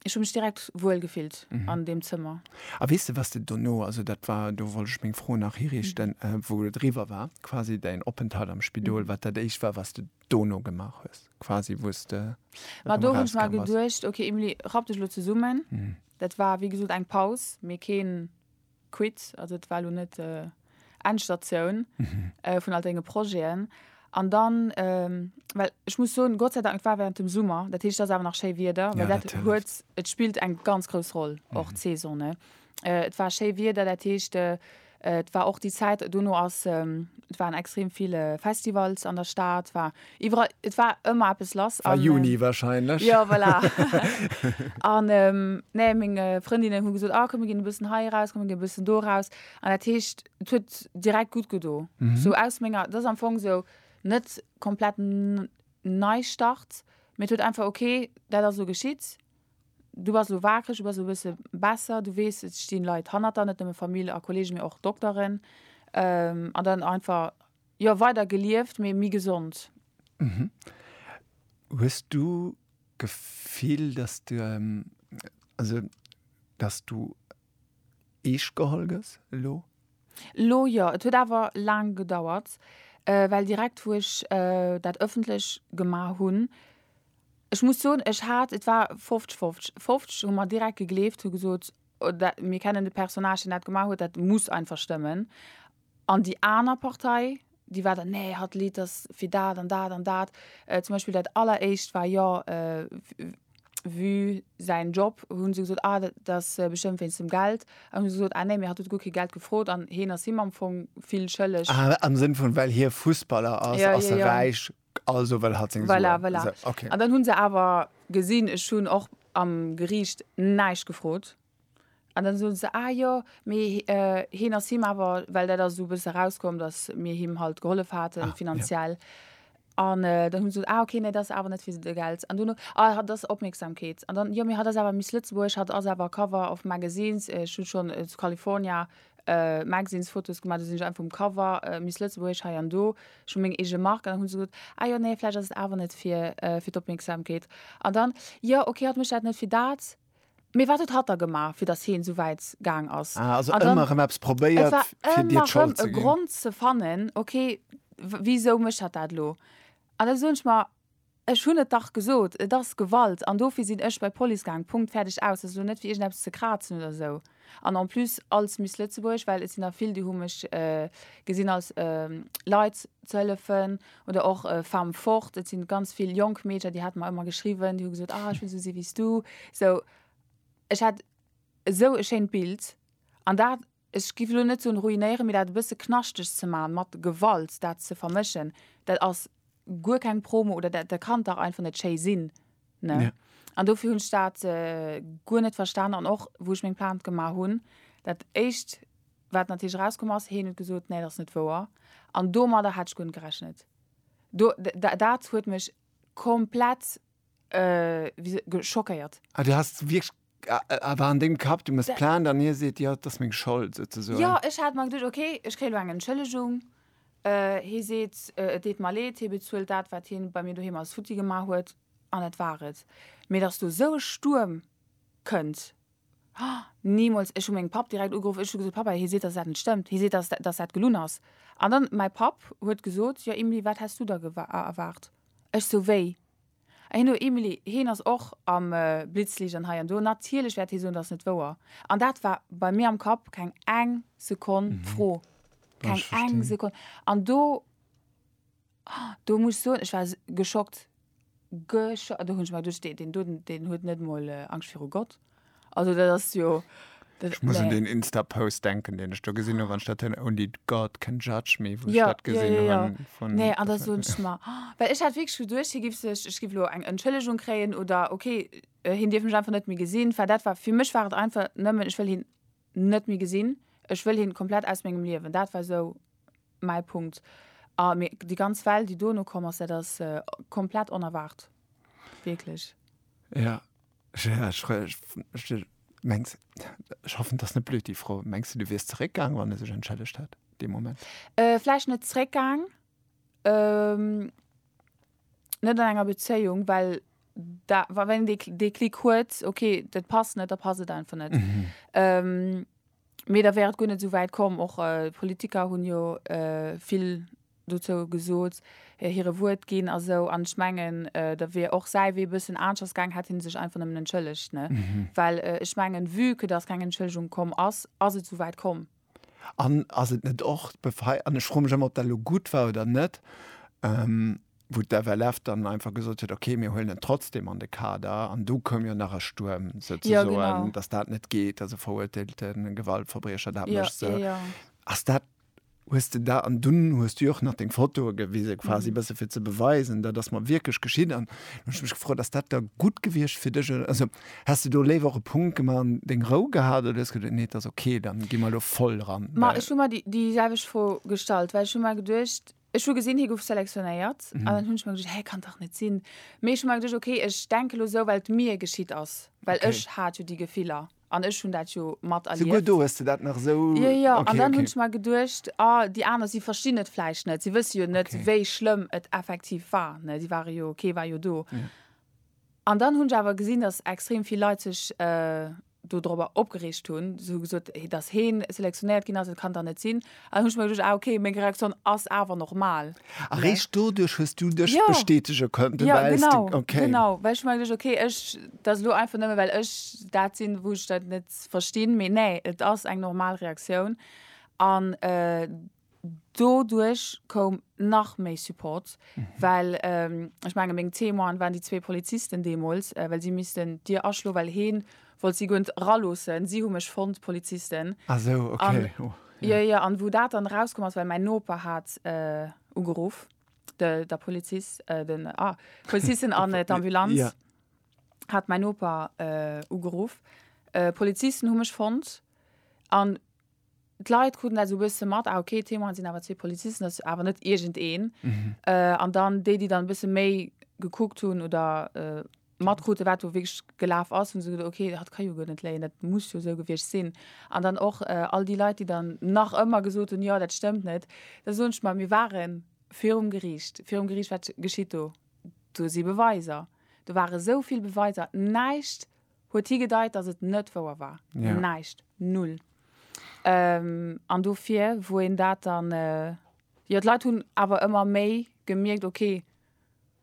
Ech hu mech direkt wuel gefillt an deem Zëmmer. A weess de, wat de dono, also dat war, do wollt ech meng Fro nach hiriichten, wou et eriwwer war, quasi däin Openthalt am Spidol, wat dat Éischt war, wat de dono gemaach hues, quasi wou s de Ma do hunn ech mer geduecht, okay Emilie, rapp dech elo zesummen. Dat war wéi gesot eng Paus, mee keen. quitt, also et war elo net Endstatioun vun all denge Projeten. An dann, well ech muss soen, Gott sei Dank, et war während dem Summer, dat heescht et ass awer nach schéi Wieder, well dat huet, et spillt eng ganz grouss Roll och d'Saison, ne. Et war schéi Wieder, dat heescht et war och déi Zäit, dono ass, et waren extrem vill Festivals an der Stad, war Iwwerall, et war ëmmer eppes lass. War Juni wahrscheinlech. Jo, voilà. An nee, meng Frëndinnen hu gesot, ah komm mir ginn e bëssen hei eraus, komm mir ginn e bëssen do eraus. An dat heescht, et huet direkt gutt gedo. Sou aus menger, dat ass am Fong sou net komplett Neistart, mee et huet einfach, ok, dat ass elo geschitt, du bass elo waakreg, du bass elo e bësse besser, du weess, et stinn Leit hanner der, net nëmme Famill a Kollegen, mee och Dokteren. An dann einfach Jo weider gelieft mee mi gesond. Mhm. Hues du Gefill dass du also dass du eescht geholl gëss elo? Elo jo. Et huet awer laang gedauert well direkt wou ech dat ëffentlech gemaach hunn, ech muss soen ech hat, et war 50 50, 50 hu mer direkt gegleeft, hu gesot mir kennen de Personnage deen dat gemaach huet, dat muss einfach stëmmen An déi aner Partei, déi war dann, nee, hatt Lidd ass fir dat an dat an dat. Zum Beispill dat alleréischt war jo Vue säin Job, hu se gesot, ah dat ass bestëmmt wéinst dem Geld. An hu se gesot, ah nee, mir hat huet guer kee Geld gefrot an heen ass him am Fong vill schëlleg. Ah, am Sënn vun, well hie Fussballer ass, ass e räich, also wëll hatt seng Suen. Voilà, voilà. An dann hu se awer gesinn, ech hunn och am Geriicht näischt gefrot. An dann soen se, ah jo, mee heen ass him awer, well dat ass esou e bësse erauskomm, dass mir him halt gehollef haten finanziell. An dann hunn se gesot, ah okay, nee, dat ass awer net fir de Geld. An dono, ah hatt ass Opmierksamkeet. An dann, jo, mee hatt ass awer Miss Lëtzebuerg, hatt ass awer Cover of Magazines, ech hu schonn zu California Magazines Fotos gemaach, do sinn ech einfach um Cover, Miss Lëtzebuerg hei an do, ech hu meng eege Mark. An dann hu se gesot, ah jo, nee, vläicht ass et awer net fir d'Opmierksamkeet. An dann, jo, okay, hatt mécht dat net fir dat, Mee wat huet hatt da gemaach, fir datt heen esou wäit gaang ass? Ah, also ëmmer erëm eppes probéiert, fir dir d'Schold ze ginn. Et war ëmmer erëm e Grond ze fannen, okay, wisou mécht hatt dat elo? An da soen ech mer, ech hunn et dach gesot, et ass Gewalt an dofir sinn ech bei d'Police gaang, Punkt, fäerdeg, aus. Dat ass elo net fir iergendeppes ze krazen oder esou. An en plus als Miss Lëtzebuerg, well et sinn der vill, déi hu mech gesinn als Leit ze hëllefen oder och Femme forte. Et si ganz vill jonk Meedcher, déi hate mer ëmmer geschriwwen, déi hu gesot, ah ech wëll esou si wéi s du. Sou ech hat esou e schéint Bild an dat, ech giff elo net soen ruinéieren, mee dat e bësse knaschteg ze maachen, mat Gewalt dat ze vermëschen, dat ass guer keng Promo oder dat kann dach einfach net schéi sinn. Ne? Ja. An dofir hunn ech dat äh, guer net verstanen an och wou ech meng Plainte gemaach hunn, dat éischt wat natierlech rauskomm ass, heen huet gesot, nee, dat ass net wouer. An domadder hat ech guer net gerechnet. Do, d- d- dat huet mech komplett äh, wie se- ge- schockéiert. Ah, du hast wirklich awer an dem Kapp, du muss plan, dann hie seet jo dass meng Schold sou ze soen. Jo ech hat mer geduecht okay ech kréie lo eng Entschëllegung, hie seet et deet mer leed, hie bezuelt dat wat hien bei mir doheem alles futti gemaach huet an dat war et. Mee dass do sou e Stuerm kënnt, nimools. Ech hu meng Papp direkt ugeruff, ech hu gesot Pappa hie seet dass dat net stëmmt, hie seet dass dass dat gelunn ass an dann mäi Papp huet gesot jo Emilie wat häss du der erwaart? Ech sou wéi? Heen o Emily, heen ass och am Blitzlicht an hei an do. Natierlech wäert hee soen, dass net wouer. An dat war bei mir am Kapp keng eng Sekonn d'Fro. Keng eng Sekonn. An do, do muss ech soen, ech war geschockt. Gescho, do hunn ech mer geduecht, deen do, deen huet net emol Angscht viru Gott. Also dat ass jo. Ech muss un den Insta-Post denken, den ech do gesinn hunn, wann ech dat hin, Only God can judge me, wou ech dat gesinn hunn. Nee, an da soen ech mer, well ech hat wierklech geduecht, hie giff sech, ech giff elo eng Entschëllegung kréien oder okay, hien dierf mech einfach net méi gesinn, well dat war, fir mech war et einfach nëmmen, ech wëll hien net méi gesinn, ech wëll hien komplett aus mengem Liewen. Dat war esou mäi Punkt. A mee déi ganz Well, déi dono komm ass, dat ass komplett onerwaart, wierklech. Ja, Ja, ech, ech, ech mengs, ech hoffen, dass net blöd déi Fro. Mengs du, du wiers zeréckgaang, wann e sech entschëllegt hätt dee Moment? Äh, vläicht net zeréckgaang, ähm, net an enger Bezéiung, well da, wa wann een dee, dee Klick huet, okay, dat passt net, da passt et einfach net. Ähm, mee da wär et guer net esou wäit komm. Och Politiker hunn jo vill dozou gesot, hire Wuert ginn a sou an ech mengen da wier och säi Wee bëssen aneschters gaangen, hätt hie sech einfach nëmmen entschëllegt, ne? Well ech mengen, vue que dass keng Entschëllegung komm ass, ass et souwäit komm. An ass et net och d'Befei, an ech froe mech ëmmer, ob dat elo gutt war oder net, wou d'FLF dann einfach gesot huet, okay, mir huelen en trotzdem an de Kader, an do koum jo nach e Stuerm souzesoen, dass dat net geet, dass e verurteelte Gewaltverbriecher dat mécht, sou. Ass dat hues de dat, an dunn hues du och nach deng Fotoe gewisen, quasi e bësse fir ze beweisen, dat ass mer wierklech geschitt. An hu ech mech gefrot, ass dat da gutt gewiescht fir dech, also häss de do léiwer och e Punkt gemaach an deng Rou gehat, oder hues geduet, nee, et ass ok, da gi mer elo voll dran? Ma ech hu mer déi déi selwecht Fro gestallt, well ech hu mer geduecht, Ech hu gesinn, hie gouf selektionéiert an dann hunn ech mer geduecht, hä, kann dach net sinn. Mee ech hu mer geduecht, okay, ech denke lo esou, well et mir geschitt ass, well Okay. ech hat jo déi Gefiller an ech hunn dat jo mat Souguer erlieft. do hues de dat nach esou, Jo, jo, jo. An okay, dann hunn okay. ech mer geduecht, ah, déi aner, si verstinn et vläicht net, si wësse jo net, Okay. wéi schlëmm et effektiv war, ne, si ware jo, kee war jo do. An dann hunn ech awer gesinn, dass extrem vill Leit sech do dorobber opgereegt hunn, hu gesot, dass hee selektionéiert ginn ass, dat kann et dach net sinn. An hunn ech mer geduecht, ah okay, meng Reaktioun ass awer normal. A réischt doduerch hues du dech bestätege konnten, well s de, okay. Jo, genau, well ech hu mer geduecht, okay, ech, dat ass elo einfach nëmme well ech dat sinn, wou ech dat net verstinn, mee nee, et ass eng normal Reaktioun. An Doduerch koum nach méi Support, well ech menge meng Témoinen waren déi zwee Polizisten deemools, well si missten d'Dier aschloen, well hee wollt si guer net eraloossen. Si hu mech fonnt, d'Polizisten. Ah esou, okay, oh. Jo, jo, an wou dat dann erauskomm ass, well mäin Noper hat ugeruff, de Polizist, den, ah, d'Polizisten an d'Ambulanz hat mäin Noper ugeruff. D'Polizisten hu mech fonnt an d'Leit kruten dat esou e bësse mat, ah ok, d'Témoine sinn awer zwee Polizisten, dat ass awer net iergendeen. An dann déi, déi dann e bësse méi gekuckt hunn oder matkruten, wat do wierklech gelaf ass, hu se geduecht, ok, dat ka jo guer net léien, dat muss jo esou gewiescht sinn. An dann och all déi Leit, déi dann nach ëmmer gesot hunn, jo, dat stëmmt net. Da soen ech mer, mir ware virum Geriicht. Virum Geriicht, wat geschitt do? Do si Beweiser. Do ware esou vill Beweiser. Näischt Huet higedeit, dass et net wouer war. Ja. Näischt. Null. An dofir, wou een dat dann, jo, d'Leit hunn awer ëmmer méi gemierkt, okay,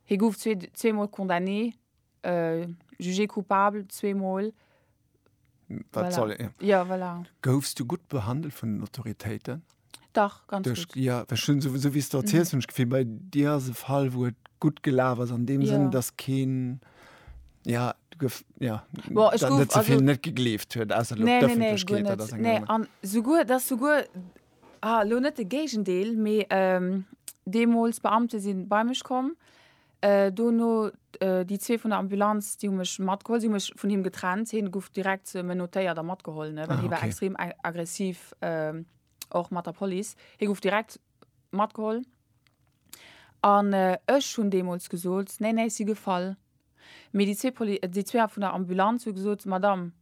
hie gouf zwee, zweemol condamné, jugé coupable zweemol. Wat soll, ja. Ja, voilà. Goufs du gutt behandelt vun den Autoritéiten? Dach, ganz Duerch, gutt. ja, well schon sou, sou wéi s de erziels, hunn ech d'Gefill, bei dir ass e Fall, wou et gutt gelaf ass, an deem Sënn, Ja. dass keen, ja, du gouf, ja, Bon, ech dann gouf, net ze also, vill net gegleeft huet, ausser lo nee, nee, nee, guer d'Öffentlechkeet, dat ass net. eng Nee, aner. an souguer, dass souguer, ah, lo net de Géigendeel, mee, ähm, deemools Beamte si bei mech komm, Dono déi zwee vun der Ambulanz, déi hu mech matgeholl. Si hu mech vun him getrennt. Hie gouf direkt menottéiert a matgeholl, ne, well hie war extrem aggressiv, och mat der Police. Hie gouf direkt matgeholl. An ech hunn deemools gesot, Nee, nee, ech si gefall. Mee déi zwee Poli, déi zwee vun der Ambulanz hu gesot, Madame,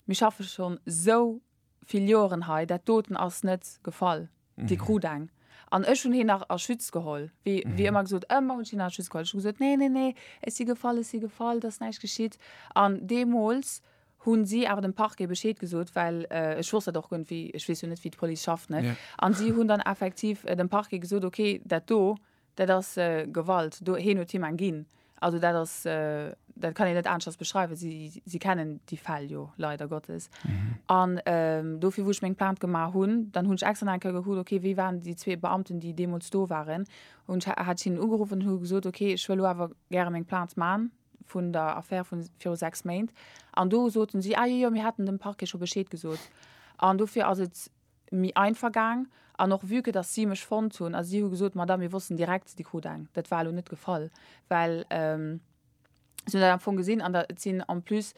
mir schaffe schonn esou vill Joeren hei, dat doten ass net gefall, dee krut eng. An ech hunn heen nach a Schütz geholl, wéi wéi ëmmer gesot, ëmmer hunn ech heen a Schütz geholl. Ech hu gesot, nee, nee, nee, ech si gefall, ech si gefall, et ass näischt geschitt. An deemools hu si awer dem Parquet Bescheed gesot, well ech wosst dat och guer net, wéi, ech weess jo net, wéi d'Police schafft, ne? An si hunn dann effektiv dem Parquet gesot, okay, dat do, Dat ass Gewalt. Do, heen huet him eng ginn. Also dat ass, dat kann een net aneschters beschreiwen. Si, si kennen déi Fäll jo leider Gottes. An dofir, wou ech meng Plainte gemaach hunn, dann hunn ech extra nach eng Kéier gekuckt, okay, wie waren déi zwee Beamten, déi deemools do waren. Hunn ech, hat ech hinnen ugeruffen an hu gesot, okay, ech wëll elo awer gäre meng Plainte man vun der Affär vu viru sechs Méint. An do soten si, ah jo, jo, mir haten dem Parquet scho Bescheed gesot. An dofir ass et mi einfach gaang an och vue que dass si mech fonnt hunn a si hu gesot, Madame, mir wossten direkt, Dir krut eng. Dat war elo net gefall, well si hunn dat am Fong gesinn an da, et sinn en plus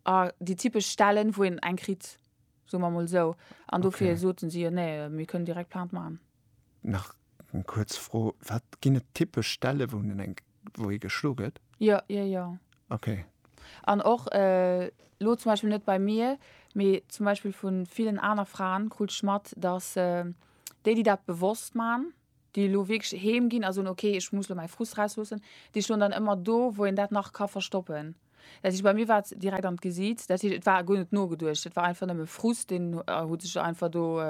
déi typesch Stellen, wou een eng kritt, soe mer emol esou, an dofir soten si, jo, nee, mir kënnen direkt Plainte maachen. Nach eng kuerz Fro, wat ginn et typesch Stelle wou en eng, wou ee geschlo gëtt? Jo, jo, jo. Okay. An och elo zum Beispill net bei mir, mee zum Beispill vu villen aner Fraen krut ech mat, datt déi, déi dat bewosst man, déi elo wierklech heem ginn a soen, okay ech muss elo mäi Frust rausloossen, déi stoen dann ëmmer do wou een dat nach ka verstoppen. Dat heescht, bei mir war et direkt an d'Gesiits. Dat heescht, et war guer net nogeduecht. Et war einfach nëmme Frust, deen huet sech einfach do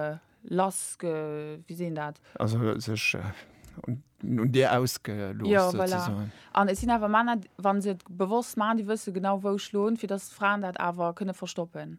lass ge. Wéi seet een dat? Also sech un dir ausgelooss. Jo, voilà. An et sinn awer Männer, wa se et bewosst maachen, déi wësse genau, wou schloen, fir datt d'Fraen dat awer kënne verstoppen.